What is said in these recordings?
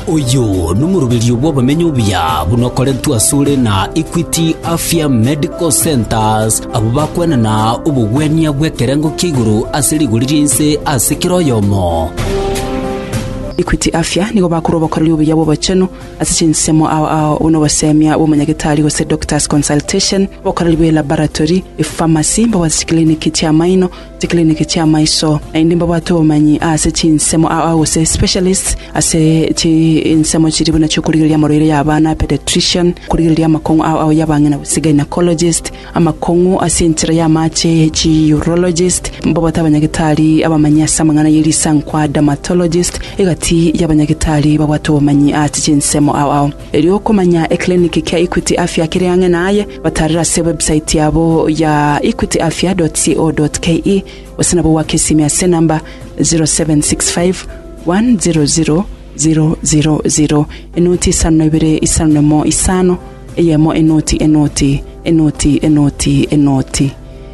Oyo nomoroberio bw'abamenyo buya buna okoretwe asore na Equity Afya Medical Centres, abwo bakwenana obogwenia bw'ekerengo kia igoro ase rigori ri'ense ase kera oyomo. Equity Afya nigo bakorwa obokoreri obuya bw'obochenu ase chinsemo ao ao buna obosemia bw'omonyagetari gose doctor's consultation, obokoreri bwe laboratory, epharmacy, mbabwate chikliniki chi'amaino, chikiriniki chi'amaiso, naende mbabwate obomanyi ase chinsemo gose specialists ase chinsemo chiria buna chi'okorigereria amorwaire y'abana, paediatrician, okorigereria amakong'u ao y'abang'ina gose gynaecologist, amakong'u ase enchera y'amache, chi urologist, mbabwate abanyagetari abamanyi ase amang'ana ye risankwa, dermatologist, egati y'abanyagetari babwate obomanyi ase chinsemo ao. Erio okomanya ekliniki kia Equity Afya kere ang'e naye, batarera ase ewebsaiti yabo ya equityafya.co.ke gose nabo goaka esimi ase enamba 0765 100 000, enoti isano na ibere isano na emo isano, eyemo enoti enoti enoti enoti enoti.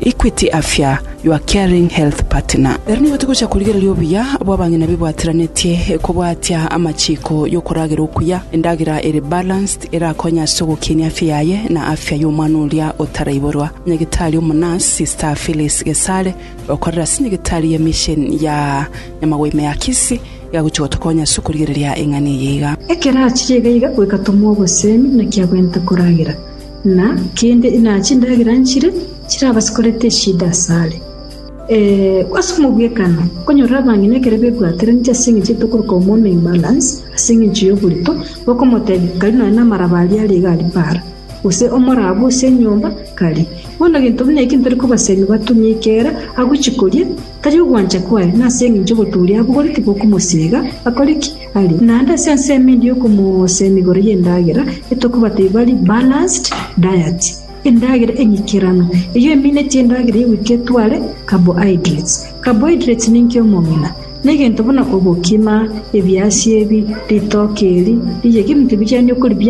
Equity Afya, your caring health partner. Ere nigo togocha korigereria obuya bw'abang'ina bebwateranetie kobwatia amachiko y'okoragera okuya. Endagera ere balanced erakonye ase ogokinia afya yaye na afya y'omwana oria otaraiborwa. Nyagetari omonurse, Sister Phyllis Gesare, okorera ase nyagetari ya Mission ya Nyamagwime ya Kisii, iga agochia gotokonya ase okorigereria eng'ana eye iga. Ekero achirie iga iga goika tomwa obosemi naki agwente koragera, Na kende na chindagera nchire chirabasikorete eshida asare. Ase omogwekano, nkonyorire abang'ina ekero bebwateraneti ase engencho ye tokoroka omoume imbalance ase engencho y'oborito, bakomotebia, Kari nonya namaraba aria are iga aria para, gose omoraba ase enyomba, kari. Bono gento buna eki ntori kobasemi batumie ekeera agochikorie, Tari ogwancha kwaye, na ase engencho ogotooria abwo gore tigokomosiega, akore ki? Arie naende ase ensemo endi y'okomoosa emegoro y'endagera, etokobata ebari balanced diet, endagera eng'ikeranu, eyio eminetie endagera y'egoika etware carbohydrates. Carbohydrates ninki omong'ina? Negento buna obokima, ebiasi ebi, ritoke eri, riyegi ebinto ebi chiani okoribiara.